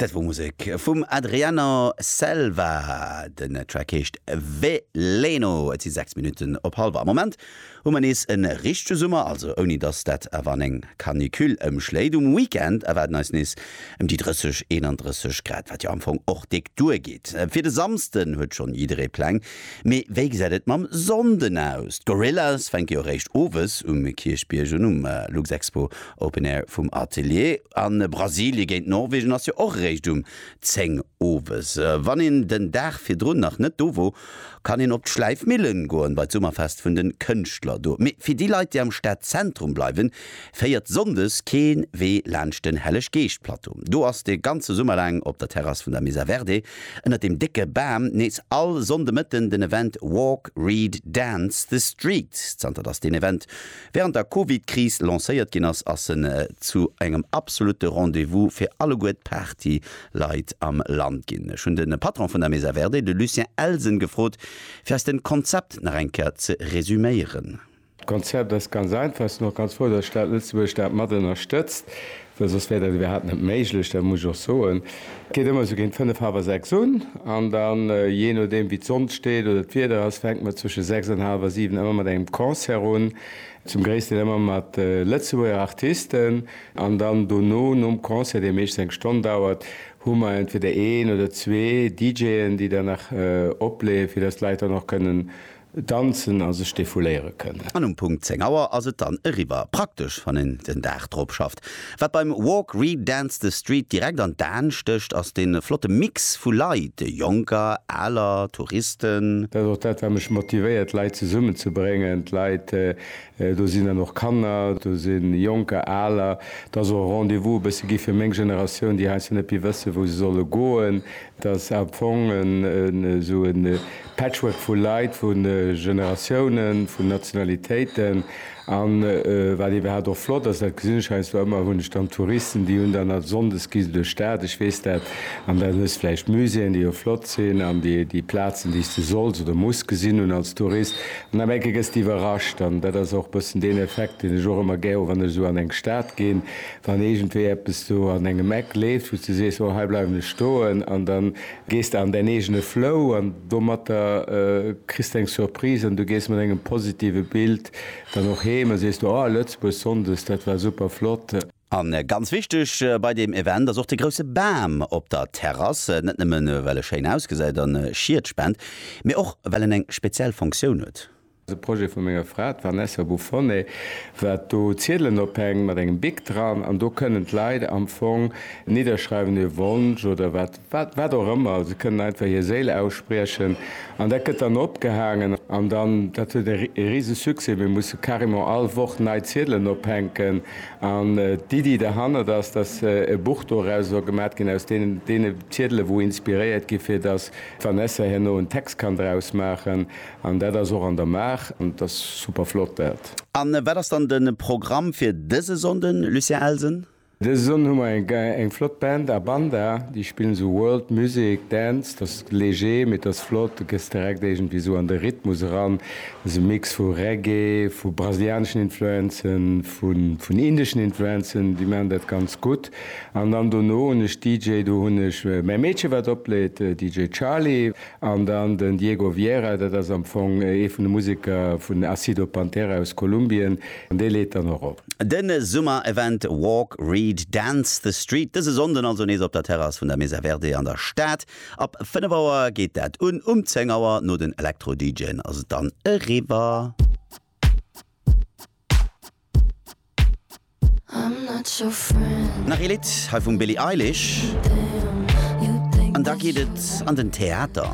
Dat wor Musek vum Adriano Selva. Den Track heescht Veleno. Et si 6 Minutten op halwer. Am Moment hu mer nees e richtege Summer, also ouni dass dat awer an eng Canicule ëmschléit. Um Weekend erwaarden eis nees ëm déi 30, 31 Grad, wat jo am Fong och déck duer geet. Fir de Samsden huet schonn jidderee Pläng, mee wéi gesäit et mam Sonnden aus? D'Gorillaz fänke jo eréischt owes um Kierchbierg un, um Luxexpo Open Air vum Atelier a Brasilie géint Norwegen ass jo och eréischt um 10 owes. Wann een den Dag virdrun nach net do wor, kann een op d'Schläifmillen goen, bei d'Summerfest vun den Kënschtler do. Mee fir déi Leit, déi am Stadzentrum bleiwen, féiert Sonndes keen Wee laanscht den Helleg-Geescht-Plateau. Do ass de ganze Summer laang op der Terrass vun der Mesa Verde ënnert dem décke Bam nees all Sonndemëtten den Event Walk, Read, Dance the Street. Zanter dass deen Event Wärend der Covid-Kris lancéiert ginn ass, ass en zu engem absolutte Rendez-vous fir alleguer d'Party-Leit am Land ginn. Ech hunn de Patron vun der Mesa Verde, de Lucien Elsen, gefrot, fir eis den Konzept nach eng Kéier ze resuméieren. D'Konzept ass ganz einfach, sinn och ganz frou, datt d'Stad Lëtzebuerg dat mat ënnerstëtzt. Well soss wär dat iwwerhaapt net méiglech, dat muss ech och soen. Et geet ëmmer esou géint fënnef, hallwer sechs un an da jee nodeem wéi d'Sonn steet oder d'Wieder ass, fänkt mer zwësche sechs an hallwer siwen ëmmer mat engem Concert un, zum gréissten ëmmer mat Lëtzebuerger Artisten. An dann dono nom Concert, dee meeschtens eng Stonn dauert, hu mer entweder een oder zwee DJen, déi dann nach opleeë fir datt d'Leit dann och kënnen Danzen a sech defouléiere kënnen. An um Punkt 10 Auer ass et dann eriwwer. Praktesch, wann een den Dag drop schafft. Wat beim Walk, Read, Dance the Street direkt an d'Aen stécht, ass de flotte Mix vu Leit, Jonker, Aler, Touristen. Dat ass och dat, wat mech motivéiert, d'Leit zesummen ze bréngen. D'Leit, do sinn dann och Kanner, do si Jonker, Aler. Et ass och e Rendez-vous e bësse gi fir meng Generatioun, déi heiansdo net méi wëssen, wou se solle goen. Et ass am Fong esou e Patchwork vu Leit, vu Generatiounen, vu Nationalitéiten. A wat iwwerhaapt och flott ass, dat gesinn ech heiansdo ëmmer, hunn ech dann Touristen, déi hunn dann, sonndes gi se duerch d'Stad, ech weess dat, an dann hues de vläicht Muséeën, déi jo flott sinn, an déi Plazen, déi s de solls oder muss gesinn hunn als Tourist. An am Enke gëss de iwwerrascht. An dat ass och e bëssen deen Effekt, deen ech och ëmmer gär hu wann ech esou an eng Stad ginn, Wann iergendwéi eppes do an engem Eck leeft, wou s de sees, oh hei bleiwen ech stoen, an da gees de an däin eegene Flow an domatter kriss de eng Surprise an du gees mat engem positive Bild dann och heem a sees du, oh Lëtzebuerg sonndes, dat war super flott. A ganz wichteg bei deem Event ass och de grousse Bam op der Terrass, net nëmmen well e schéin ausgesäit an Schied spent, mee och well en eng speziell Funktioun huet. De Projet vu menger Fra, d'Vanessa Bufone, war do Ziedelen ophängen mat engem Bic dran an do kënnen d'Leit am Fong nidderschreiwen hir Wonsch oder wat, wat och ëmmer. Se kënnen einfach hir Séil ausspriechen an dat gëtt dann opgehaangen an dann, dat huet e rise Succès. Mir musse carrément all Woch nei Ziedelen ophänken an d'Iddi derhannert ass, dass e Buch doraus soll gemat ginn aus deene Ziedelen, wou inspiréiert gi fir dass d'Vanessa herno en Text kann draus maachen An dat ass och an der Maach an et ass super flott dat. A wat ass dann de Programm fir dëse Sonnden, Lucien Elsen? Dëse Sonnden hu mer eng flott Band, Abanda, déi spillen esou World Music, Dance, dat ass léger, mee et ass flott, du gëss direkt iergendwéi esou an de Rhythmus eran. Dat ass e Mix vu Reggae, vu brasilianeschen Influenzen, vun indeschen Influenzen, déi maachen dat ganz gutt. An dann dono hunn ech DJ, do hunn ech mäi Meedche wat opleet, DJ Charly, An dann den Diego Viera, dat ass am Fong ee vun de Museker vun Acido Pantera aus Kolumbien, an dee leet dann och op. De Summer-Event Walk, Read, Dance the Street, dëse Sonnden also nees op der Terrass vun der Mesa Verde an der Stad. Ab 5 Auer geet dat un, um 10 Auer, no den Elektro-DJen, ass et dann eriwwer. Nach ee Lidd hei vum Billie Eilish an da geet et an den Theater.